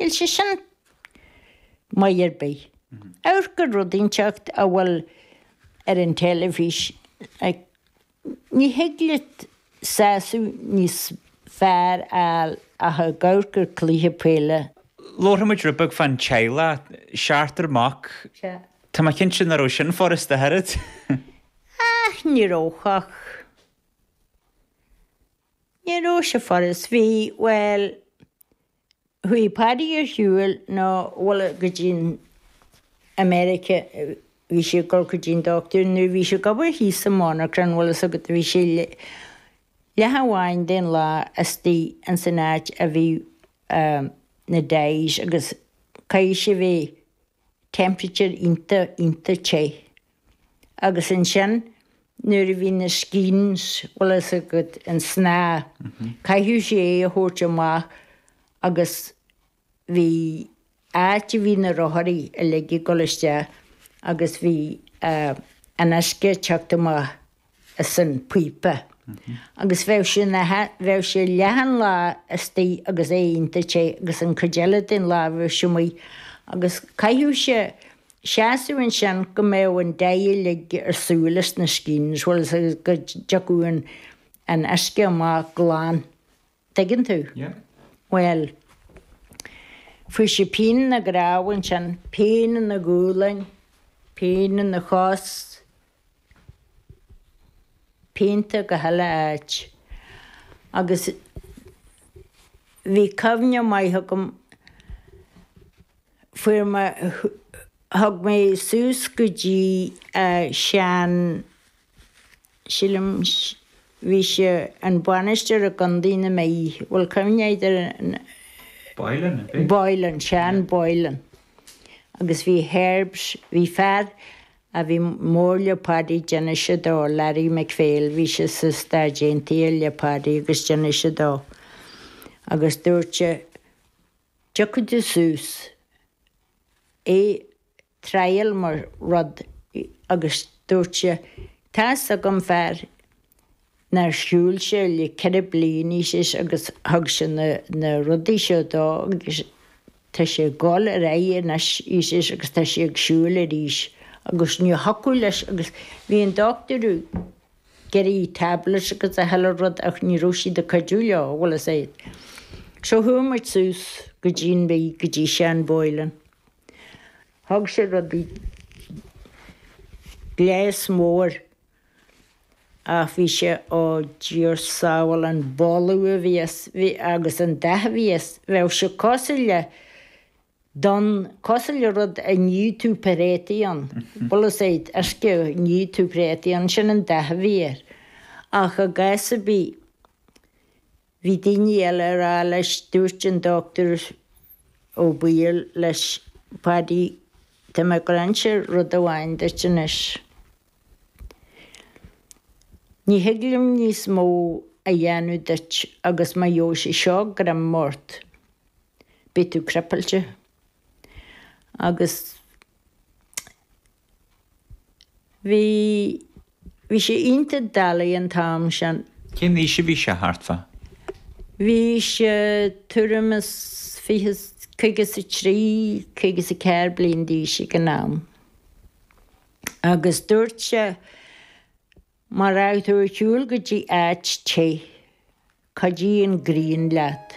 níl sé sin maith ar bith. Amharc ar rud inteacht a bhfuil ar an teilifís, ní thig leat sásamh níos fearr a fháil ach ag amharc ar chluiche peile. Labharfaidh muid rud beag fán teaghlach, seachtar mac, tá mé cinnte nach raibh sin furast ach oiread. Á ní raibh ach. Ní raibh sé furast. Bhí, bhuel, chuaigh Paddy ar shiúl, nó, bhfuil fhios agat, go dtí an, America, bhí sé ag dul go dtí an doctúir, nuair a bhí sé ag obair thíos sa mhonarchan, bhfuil fhios agat a bhí sé leath amháin den lá astoigh ins an áit a bhí na dyes agus caithfidh sé a bheith, temperature iontach iontach te agus ansin nuair a bhí na skeins bhfuil fhios agat an snáth caithfeadh sé é a thabhairt amach agus bhí áit a bhí na rotharí uilig ag dul isteach agus bhí an uisce ag teacht amach. as an bpíopa agus bheadh sé ina bheadh sé leath an lá astoigh agus é iontach te agus an chuid eile den lá a bheadh sé amuigh agus caithfeadh sé seasamh ansin go mbeadh an dye uilig ar shiúl as na skeins bhfuil fhios agat go dtiocfadh an an uisce amach glan dtuigeann tú? Bhuel. Fuair sé pian ina dhroim ansin, pian ina ghualainn, pian ina chos, pianta gach uile áit. Agus bhí cuimhne maith agam, fuair mé, thug mé suas go dtí Seán, Sílim bhí sé an bainisteoir i gContae na Mí. Bhfuil cuimhne agat air? Boylan, an bhí? Boylan, Seán Boylan. Agus bhí Herbs, bhí fear a bhí mór le Paddy, d'inis sé dó, Larry McPhail, bhí sé sna Stáit Aontaithe le Paddy agus d'inis sé dó. Agus dúirt sé, tiocfaidh tú suas, é thriail mo rud agus dúirt sé Tá's agam fear nár shiúil sé le ceithre bliana agus thug sé na rudaí seo dó agus tá sé ag dul ar aghaidh anois agus tá sé ag siúl arís agus ní thiocfadh leis agus bhí an dochtúir ag iarraidh tablets agus gach uile rud ach ní raibh siad ag cuidiú leo bhfuil fhios agat so chuaigh muid suas go dtí an Mhí go dtí Seán Boylan. Thug sé rudaí gléas mór ach bhí sé ó Dia ár sábháil an boladh a bhí as agus an dath a bhí as bheadh sé cosúil le donn cosúil le rud a nífeadh tú préataí ann bhfuil a fhios agat uisce a nífeadh tú préataí ann sin an dath a bhí air ach i gcás a bhí Bhí daoine eile ag rá leis, dúirt an Dr Ó Baoill leis Paddy, tá mé ag gabháil a inse rud amháin duit anois. Ní thig liom níos mó a dhéanamh duit agus má gheibh sé seo greim ort, beidh tú cripleáilte. Agus. Bhí, bhí sé iontach doiligh an t-am sin. Cén aois a bhí sé thart fa? Bhí sé tuairim is fiche, caoga is a trí, caoga is a ceathair bliain d'aois ag an am. Agus dúirt sé, Mura raibh tú ar shiúl go dtí áit te, go dtí an ghrian leat?